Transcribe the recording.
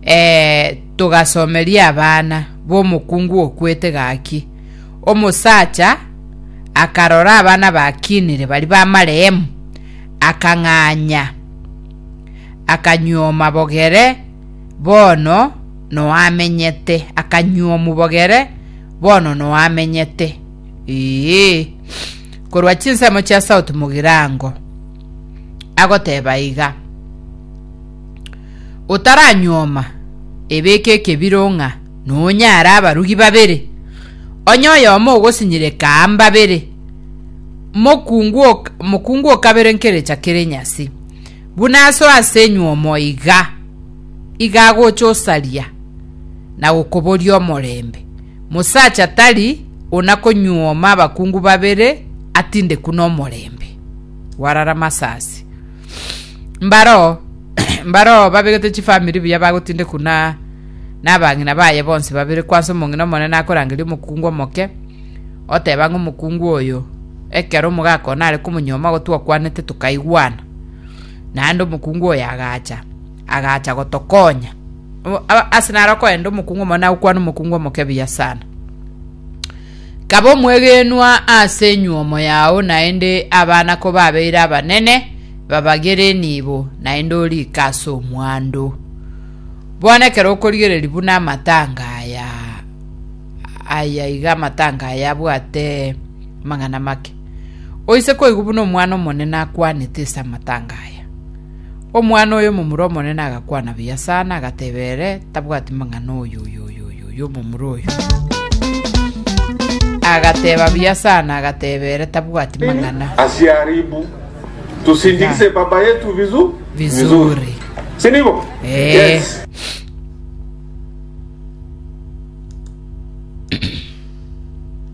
Ee, togasomeria abana b'omokungu okwete gaki, Omosacha akarora abana bakinire bari b'amarehemu, akang'anya, akanyuoma bogere bono noamenyete, akanyuomu bogere bono noamenyete. Ee, korwa chinsemo chia South Mogirango agoteba iga. otaranyuoma ebeke ekebiro ng'a nonyare abarugi babere, onye oyomo ogosinyireka aa mbabere, mokungu ok- mokungu o kabere nkerecha kere nyasi, buna aso ase enyuomo iga, iga agocha osaria na gokoboria omorembe. Mosacha tari onakonyuoma abakungu babere atindeku nomorembe. Gwarara masasi. Mbaroo mbaroo babegete chifamiri buya bagotindekwa na nabang'ina baye bonsi babere kwansa omong'ina omonene akorangeria omokungu omoke oteba ng'a omokungu oyo ekero omogaka one are komonyuoma igo twakwanete tokaigwana naende omokungu oyo agacha agacha gotokonya ase naro okoenda omokungu omonene agokwana omokungu omoke buya sana Kaba omwegenwa ase enyuomo yao, naende abana kobabeire abanene, babagere enibo, naende oriike ase omwando. Bono ekero okorigereria buna amatanga aya, aya iga amatanga aya abwate amang'ana make, oise koigwa buna omwana omonene akwanete ase amatanga aya. Omwana oye omomura omonene agakwana buya sana, agateba ere tabwati mang'ana oyo omomura oyo. Agateba buya sana, agateba ere tabwati mang'ana. Asiharibu, tusindikise baba yetu vizuri. Sinibo? Yes.